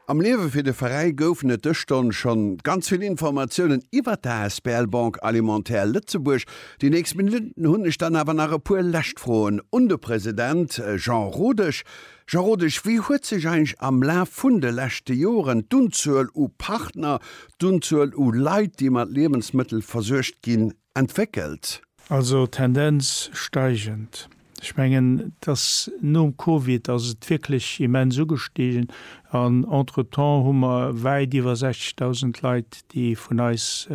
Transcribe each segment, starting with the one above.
Am Liewe fir de Veräi goufen et dës Stonn schonn ganz vill Informatiounen iwwert der asbl Banque Alimentaire Lëtzebuerg. Déi nächst Minutten hunn ech dann awer nach e puer lescht Froen un de President Jean Rodesch. Jean Rodesch, wéi huet sech eigentlech am Laf vun de leschte Joren d'Unzuel u Partner, d'Unzuel u Leit, déi mat Liewensmëttel versuergt ginn, entwéckelt? Also Tendenz steigend. Ech mengen, et ass nom Covid ass et wierklech immens ugestigen an entretemps hu mer wäit iwwer 60.000 Leit, déi vun eis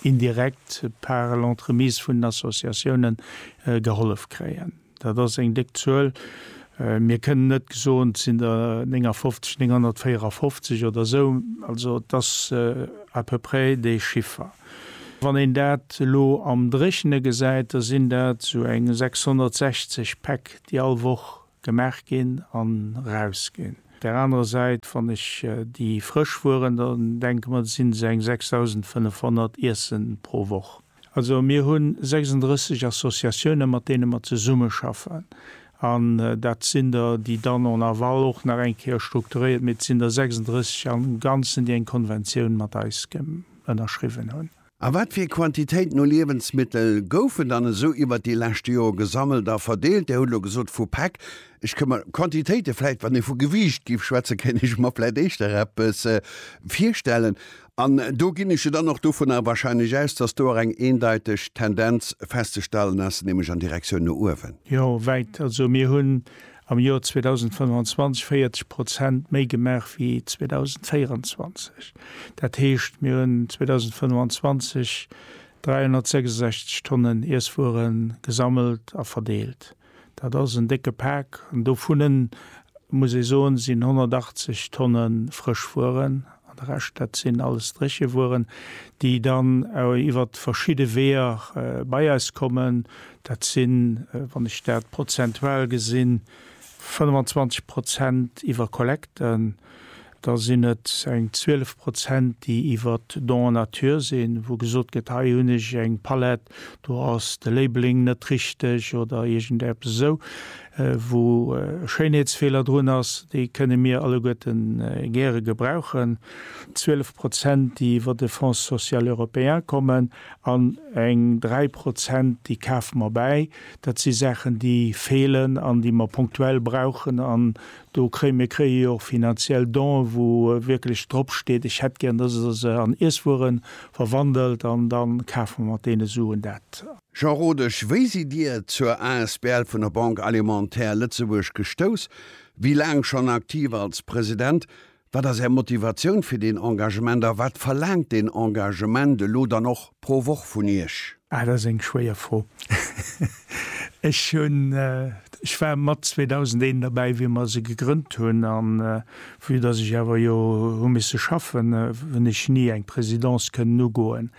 indirekt par l'entremise vun den Associatiounen gehollef kréien. Dat ass eng déck Zuel. Mir kënnen net soen, et sinn der 59, 954 oder esou. Also et ass à peu près dee Chiffer. Wann een dat elo am Dréchne gesäit, da sinn dat esou eng 660 Päck, déi all Woch gemaach ginn an erausginn. Op där anerer Säit, wann ech déi frësch Wueren, da denke mer, sinn se eng 6.500 Iessen pro Woch. Also mir hu 36 Associatiounen, mat deene mer zesummeschaffen. An dat sinn der, déi dann en aval och nach eng Kéier strukturéiert, mee et sinn der 36 am Ganzen, déi eng Konventioun mat eis ënnerschriwwen hunn. A wat fir Quantitéiten u Liewensmittel goufen dann esou iwwert déi leschte Joer gesammelt a verdeelt? Dir hutt elo gesot vu Päck. Ech ka mer Quantitéite vläicht, wann ee vu Gewiicht géif schwätzen, kéint ech mer vläicht éischter eppes virstellen. An do ginn ech jo dann och dovunner wahrscheinlech aus, dass do och eng eendeiteg Tendenz festzestellen ass, nämlech an Direktioun no uewen. Jo, wäit. Also mir hunn am Joer 2025 40 Prozent méi gemaach wéi 2024. Dat heescht, mir hunn 2025 366 Tonnen Iesswuere gesammelt a verdeelt. Dat ass en décke Pak. Dovunne muss ee soen, sinn 180 Tonne frësch Wueren an de Rescht, dat sinn alles dréche Wueren, déi dann iwwer verschidde Weeër bei eis kommen. Dat sinn, wann ech dat prozentual gesinn, 25 Prozent iwwer Kollekten, Da sinn et eng 12 Prozent, déi iwwer Don en nature sinn, wou gesot gëtt, hei hunn ech eng Palett, do ass de Labeling net richteg oder iergend eppes esou, wou e Schéinheetsfeeler drun ass. Déi kënne mir alleguerte gäre gebrauchen. 12 Prozent, déi iwwer de Fonds social européen kommen an eng 3 Prozent, déi kafe mer bäi. Dat si Saachen, déi feelen an déi mer punktuell brauchen an Do kréie mir kréie jo och finanziell Donë wou wierklech drop steet, ech hätt gär, dass Der se an Iesswuere verwandelt an da kafe mer mat deene Suen dat. Jean Rodesch, Wéi sidd Dir zur asbl vun der Banque alimentaire Lëtzebuerg gestouss? Wéi laang schonn aktiv als President? Wat ass Är Motivatioun fir deen Engagement a wat verlaangt deen Engagement elo dann och pro Woch vun Iech? Ah, dat ass eng schwéier Fro. Ech hunn, ech war mat 2001 derbäi, wéi mer se gegrënnt hunn, a vue datt ech awer jo hu misse schaffen, hunn ech ni eng Présidence kënnen ugoen.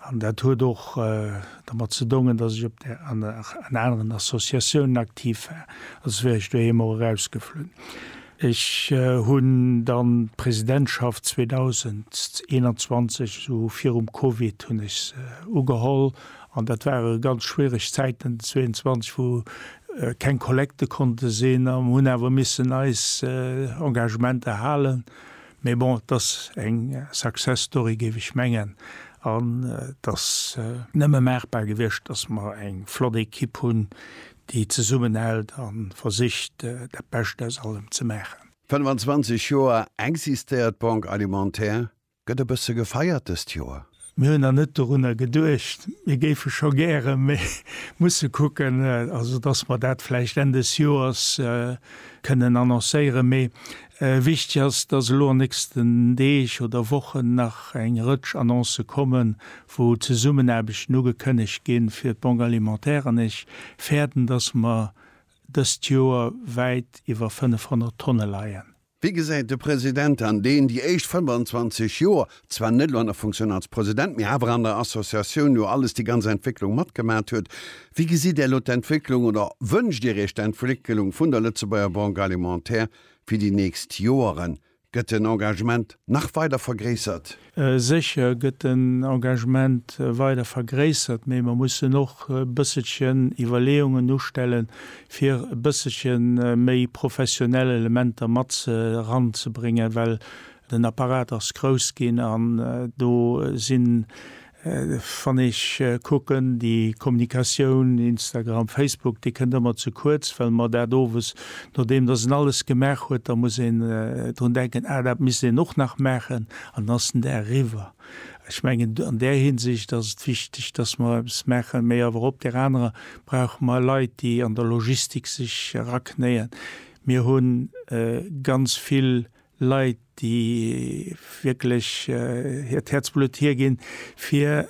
An dat huet och dermat ze dongen, datt ech op där, an aneren Associatiounen aktiv war, also wär ech doheem och erausgeflunn. Ech hunn dann d'Presidentschaft 2021, esou virum Covid hunn ech se ugeholl, an dat ware ganz schwiereg Zäiten, 22 wou keng Kollekte konnte sinn a mir hunn awer missen eis Engagementer halen. Mee bon, et ass eng Success Story géif ech mengen an et ass nëmme maachbar gewiescht, datt mer eng flott Ekipp hunn, déi zesummenhält a versicht, dat Bescht aus allem ze maachen. 25 Joer existéiert d'Banque Alimentaire. Gëtt e bësse gefeiert dëst Joer? Mir hunn nach net dorunner geduecht. Mir géife scho gären, mä musse kucken, also datt mer dat vläicht Enn des Joers kënnen annoncéieren. Mee Wichtig ass, dass elo an nächsten Deeg oder Wochen nach eng Rëtsch Annoncë kommen, wou Zesummenaarbechten ugekënnegt ginn fir d'Banque alimentaire. An ech fäerten, dass mer dëst Joer wäit iwwer 500 Tonne leien. Wéi gesäit de President an deen déi éischt 25 Joer, zwar net elo an der Funktioun als President, mee awer an der Associatioun jo alles, déi ganz Entwécklung matgemat huet, wéi gesitt Där elo d'Entwécklung oder wënscht Dir Iech d'Entwécklung vun der Lëtzebuerger Banque alimentaire? Fir déi nächst Joere gëtt den Engagement nach weider vergréissert? Sécher gëtt den Engagement weider vergréissert, mee mer mussen och e bësselchen Iwwerleeungen ustellen, fir e bësselche méi professionell Elementer mat eranzebréngen, well den Apparat ass grouss ginn an do sinn Wann ech kucken, déi Kommunikatioun, Instagram, Facebook, déi kënnt ëmmer ze kuerz, well mer dat owes, nodeem datt een alles gemaach huet, da muss een drun denken, ah, dat misst een och nach maachen, an dann ass den Dag eriwwer. Ech mengen, an där Hinsicht ass et wichteg, datt mer eppes maachen, mä awer op där anerer brauche mer Leit, déi an der Logistik sech eraknéien. Mir hu ganz vill Leit, déi wierklech hiert Häerzblutt hierginn, fir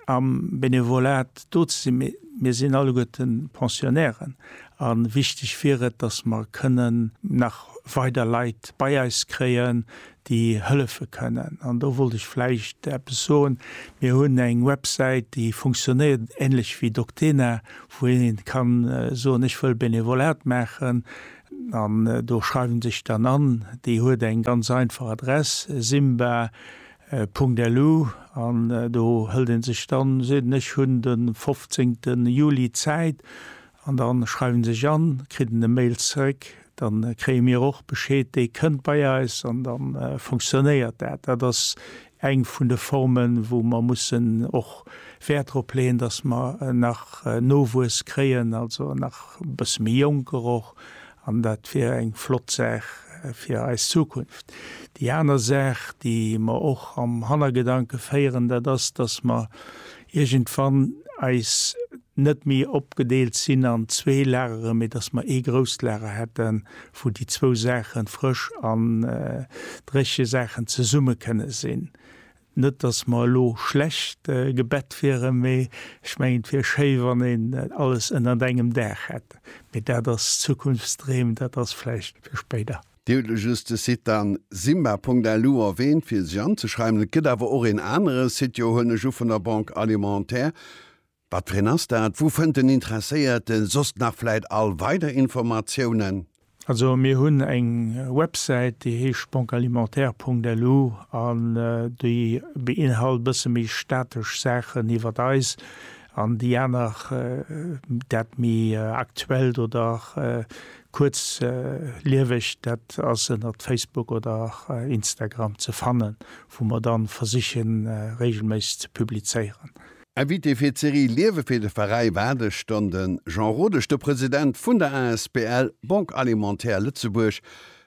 am Benevolat do ze sinn. Mee mir sinn alleguerte Pensionnairen a wichteg wier et, dass mer kënnen nach weider Leit bei eis kréien, déi hëllefe kënnen. An do wollt ech vläicht eppes soen, Mir hunn eng Websäit, déi funktionéiert änlech wéi Doctena, wou ee ka soen, Ech wëll Benevolat maachen. An do schreiwen se sech dann an. Déi huet eng ganz einfach Adress, simba. LU, an do hëlt ee sech dann, seet en, ech hunn de 15 Juli Zäit, an dann schreiwen se sech an, kritt en e Mail zeréck, dann kréie mir och Bescheed, dee kënnt bei eis, an dann funktionéiert dat. Dat ass eng vun de Formen, wou mer mussen och Wäert drop leeën, dass mer nach Nowuess kréien, also nach e bësse méi Jonker och, an dat wier eng flott Saach fir eis Zukunft. Déi aner Saach, déi mer och am Hannergedanke féieren, dat ass, dass mer iergendwann eis net méi opgedeelt sinn an zwee Lageren, mee dass mer ee grousst Lager hätten, wou déi zwou Saachen, frësch an dréche Saachen, zesumme kënne sinn. Net dass mer elo schlecht gebett wieren, mee ech mengen et wier schéi wann een alles ënnert engem Daach hätt. Mee dat ass Zukunftsdreem, dat ass vläicht fir spéider. Dir hutt elo just de Site dann simba.lu erwähnt fir sech anzeschreiwen, et gëtt awer och een anere Site, jo huelen ech u vun der Banque Alimentaire, wat fir een ass dat? Wou fënnt den Interesséierte soss nach vläit all weider Informatiounen? Also mir hunn eng Websäit déi heescht banquealimentaire.lu an déi beinhalt bësse méi statesch Saachen iwwert eis an déi aner dat méi aktuellt oder Kuerzlieweg, dat ass ënnert Facebook oder Instagram ze fannen, wou mer dann versiche regelméisseg ze publizéieren. Invité fir d'Serie Liewe fir de Veräi war gëschter de Jean Rodesch, de President vun der asbl Banque Alimentaire Lëtzebuerg.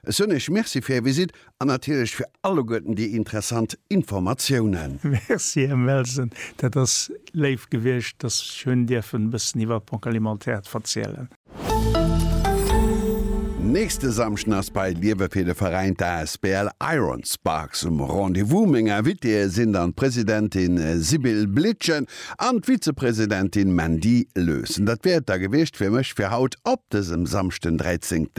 Ech soen Iech Merci fir Är Visitt an natierlech fir alleguerten déi interessant Informatiounen. Merci, Här Melsen, dat ass léif gewiescht, dass ech hunn dierfen e bëssen iwwert d'Banque Alimentaire ze verzielen. Nächste Samschden ass bei Liewe fir de Veräin d'ASBL Iron Sparks um Rendez-vous. Meng Invitéeë sinn dann d'Presidentin Sibylle Blitgen an d'Vizepresidentin Mandy Lössen. Dat wär et da gewiescht fir mech fir haut op dësem Samschden 13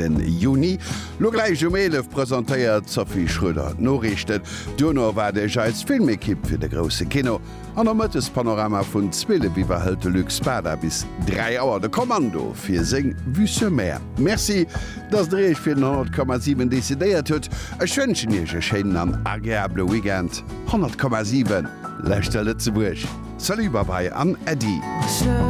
Juni. Lo gläich um 11 presentéiert d'Sophie Schröder d'Noriichten. Duerno erwaart Iech eis Filmekipp fir de grousse Kino. An am Mëttespanorama vun 12 Uer hëlt de Luc Spada bis 3 Auer de Kommando fir seng Vue sur Mer. Merci, dass Der Iech fir den 100,7 decidéiert hutt. Ech wënschen Iech e schéinen an agreabele Weekend. 100,7 Leschter Lëtzebuerg, Salut, Babai an Äddi.